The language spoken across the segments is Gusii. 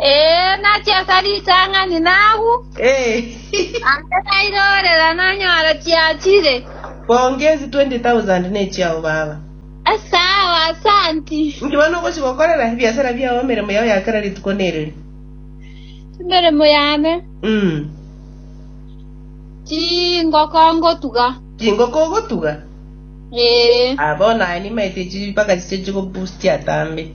Ee, nachaka ritang'ani nagwo, ande nairorera nanyora chiachire. Bonge ezi 20,000 nechiao baba. Asao, asanti. Inki bono ogochi gokorera ebiasara biao emeremo yao ya kera rituko nereri? Emeremo yane, Mm. chingoko ngotuga. Chingoko ogotuga? Ee. Ah, bono aye nimaete echi mpaka chiche chigobustia tambe.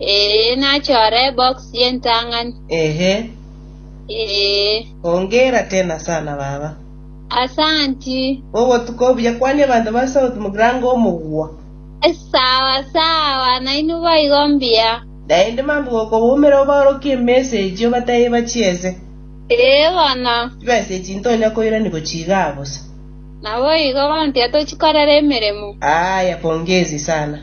Ee, nachore ebox y'entang'ani. Ehe. Ee. Hongera tena sana baba. Asanti. Obotuko obuya. Kwania abanto ba South Mugrango omogwa. Sawa sawa, nainwe boigo mbuya. Naende mambia gokoboumera obaorokie emessage obataie bachiese. Ee bono. Chibesa echi ntonya koirani gochia igaa bosa? Naboigo, bono tiga tochikorera emeremo. Aaya, pongezi sana.